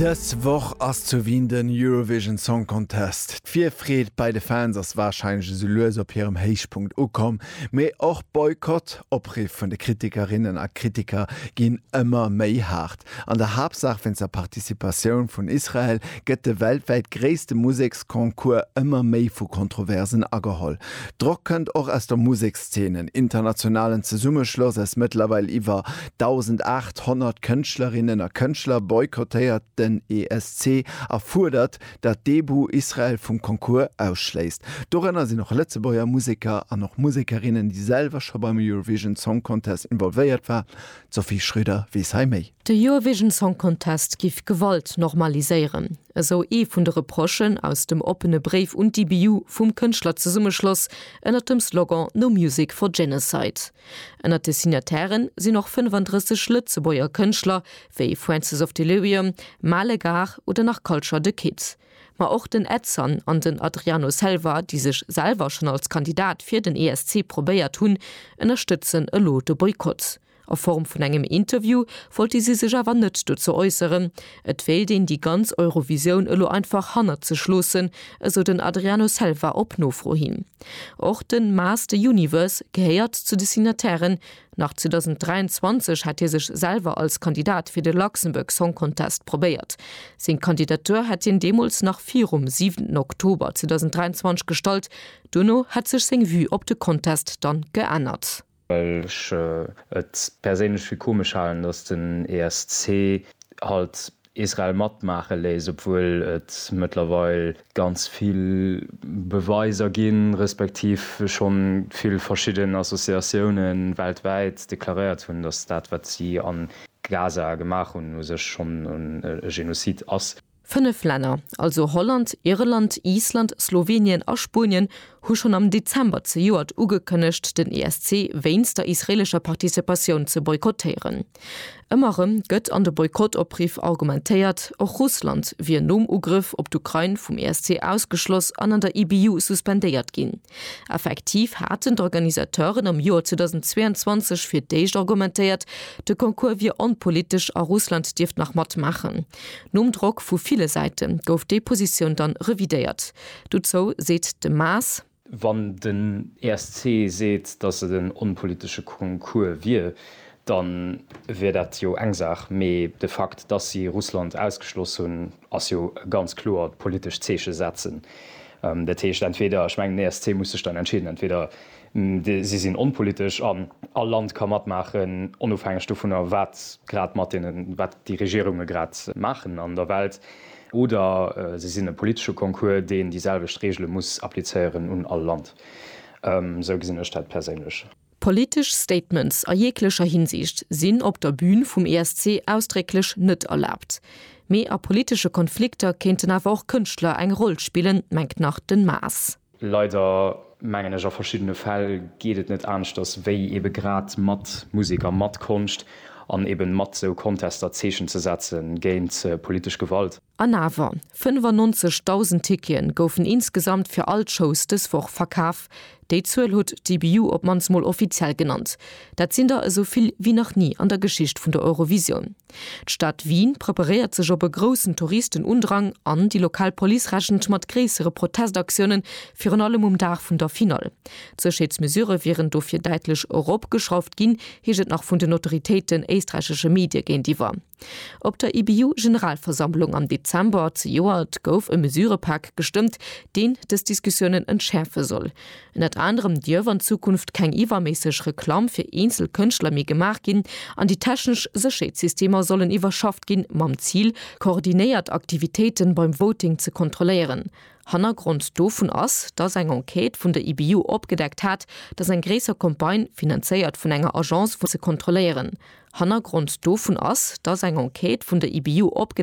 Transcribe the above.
Dës Woch ass zu Wien den Eurovision Song Contest. D'Virfreed bei de Fans ass warscheinlech esou lues op hirem Héichpunkt ukomm, mee och Boykott Opriff vun de Kritikerinnen a Kritiker ginn ëmmer méi haart. An der Haaptsaach wéinst der Participatioun vun Israel gëtt de weltwäit gréisste Museksconcours ëmmer méi vu Kontroversen ageholl. Drock kënnt och aus der Musekszeene. D'Szenen, internationalen Zesummeschloss aus mëttlerweil iwwer 1.800 Kënschtlerinnen a Kënschtler, boykottéiert den ESC a fuerdert, datt d'EBU Israel vum Concours ausschléisst. Dorënner sinn och Lëtzebuerger Museker an och Musekerinnen, déi selwer scho beim Eurovision Song Contest involvéiert war. D'Sophie Schröder weess hei méi. De Eurovision Song Contest giff Gewalt normaliséieren. esou ee vun de Reprochen aus dem oppene Bréif un d'IBU vum Kënschtlerzesummeschloss ënnert dem Slogan No Music for Genocide. Ënnert de Signataire sinn och 35 Lëtzebuerger Kënschtler, wéi Francis of Delirium, Male Gare oder nach Culture The Kid. Ma och den Edson an den Adriano Selva, déi sech selwer schonn als Kandidat fir den ESC probéiert hunn, ënnerstëtzen elo de Boykott. A Form vun engem Interview wollte si sech awer net dozou äusseren. Et wéilt een déi ganz Eurovisioun elo einfach hannert sech loossen, esou den Adriano Selva op Nofro hin. Och de Maas the Universe gehéiert zu de Signatairen. Nach 2023 hätt hie sech selwer als Kandidat fir de Luxembourg Song Contest probéiert. Seng Kandidatur hätt hien deemools nach virum 7 Oktober 2023 gestallt. Duerno hätt sech seng Vue op de Contest dann geännert. well ech et perséinlech fir komesch halen, datt den ESC halt Israel matmaache léisst, obwuel et mëttlerweil ganz vill Beweiser ginn, respektiv schonn vill verschidden Associatiounen weltwäit deklaréiert hunn, datt dat wat si a Gaza gemaach hunn u sech schonn e Genozid ass. Fënnef Länner, also Holland, Irland, Island, Slowenien a Spuenien, hu schonn am Dezember zejoert ugekënnegt, den ESC wéinst der israeelescher Participatioun ze boykottéieren. Ëmmer erëm gëtt an de Boykott-Opriff argumentéiert, och Russland wier nom Ugrëff op d'Ukrain vum ESC ausgeschloss an an der IBU suspendéiert ginn. Effektiv haten d'Organisateuren am Joer 2022 fir d'éischt argumentéiert, de Concours wier onpolitesch a Russland dierft nach matmaachen. Nom Drock vu ville Säite gouf déi Positioun dann revidéiert. Dozou seet de Maas. Wann den ESC seet, datt et en onpolitesche Concours wier, da wier dat jo eng Saach, mee de Fakt, datt si Russland ausgeschloss hunn, ass jo e ganz kloert politescht Zeeche setzen. Dat heescht entweder, ech mengen den ESC muss sech dann entscheeden, entweder Si sinn onpolitesch an all Land ka matmaachen, onofhängeg dovunner, wat grad mat deenen, wat déi Regierunge grad maachen an der Welt. Oder se sinn e politesche Concours, deen déi selwecht Reegele muss applizéieren un all Land. Esou gesinn ech dat perséinlech. Politesch Statements a jeeglecher Hinsicht sinn op der Bün vum ESC ausdrécklech net erlaabt. Mee a politesche Konflikter kéinten awer och Kënschtler eng Roll spillen, mengt nach den Maas. Leider, mengen ech, a verschiddene Fäll geet et net aneschters, wéi ebe grad mat Musek a mat Konscht an eben mat sou Contester Zeechen ze setze géint politesch Gewalt. An awer, 95.000 Ticketen goufen insgesamt fir all d'Shows dës Woch verkaf. Déi Zuel huet d'EBU op mannst mol offiziell genannt. Dat sinn der esou vill wéi nach ni an der Geschicht vun der Eurovisioun. D'Stad Wien preparéiert sech op e groussen Touristenundrang an déi lokal Police rechent mat gréissere Protestaktiounen, virun allem um Dag vun der Finall. D'Sécherheetsmesurë wieren dofir däitlech eropgeschrauft ginn, heescht et nach vun den Autoritéiten éisträichesche Medie géintiwwer. Op der IBU-Generalversammlung am Dezember zejoert gouf e Mesurëpak gestëmmt, deen dës Diskussiounen entschäerfe soll. Ënnert anerem dierf an Zukunft keng iwwerméisseg Reklamm fir eenzel Kënschtler méi gemaach ginn an déi technesch Sécherheetssystemer sollen iwwerschafft ginn, mam Zil, koordinéiert Aktivitéite beim Voting ze kontrolléieren. Hannergrond dovun ass, dass eng Enquête vun der IBU opgedeckt hat, dass eng gréisser Campagne, finanzéiert vun enger Agence, fir ze kontrolléieren, Hannergrond dovun ass, dass eng Enquête vun der IBU opgedeckt.